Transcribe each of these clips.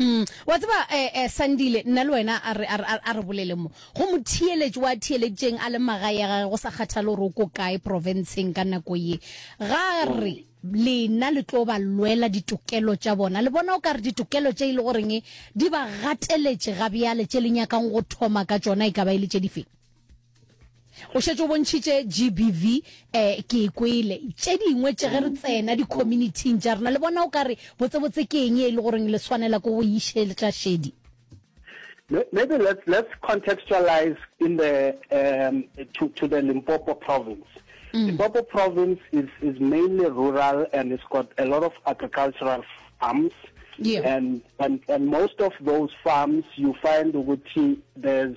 Umm, wa tseba, eh, eh, Sandile, nna le wena a re, a re, a re bolele mo. Go motheeletši wa theeleditšeng a le magae a gage go sa kgathale gore o ko kae profenseng ka nako ye. Ga re, lena le tlo ba lwela ditokelo tša bona. Le bona o ka re ditokelo tše e le goreng di ba gateletše gabjale tše le nyakang go thoma ka tšona e ka ba e le tše dife? O šetše o bontšhitše GBV, eh, ke e kwele. Tše dingwe tše ge re tsena di-community-ing tša rena, le bona o ka re botsebotse ke eng ye e le goreng le swanela ke go e išetša šedi? May- Maybe let's, let's contextualize in the, um, to, to the Limpopo province. Limpopo province is, is mainly rural and it's got a lot of agricultural farms. Yeah. And, and, and most of those farms, you find ukuthi there's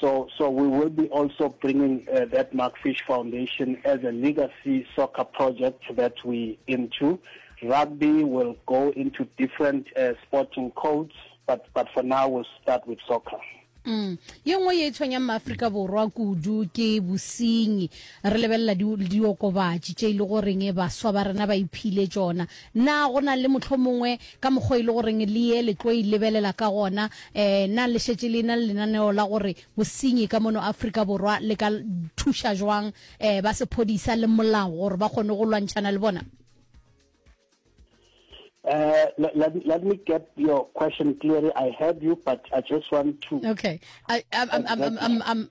So so we will be also bringing uh, that Mark Fish Foundation as a legacy soccer project that we into. Rugby will go into different uh, sporting codes, but but for now we'll start with soccer. Mm. ye nngwe ye e tshwenyang maaforika borwa kudu ke bosenyi re lebelela diokobatši tše e le goreng baswa ba rena ba iphile tšona Na go na le mohlomongwe ka mokgwa e le goreng le ye le tlo e lebelela ka gona? Ee, na le šetše le ena le lenaneo la gore bosenyi ka mono Afrika Borwa le ka thuša jwang ee ba sephodisa le molao gore ba kgone go lwantšhana le bona? Uh, let, let, let, me get your question clearly. I heard you, but I just want to. Okay. I, I'm, I'm, I'm, I'm, I'm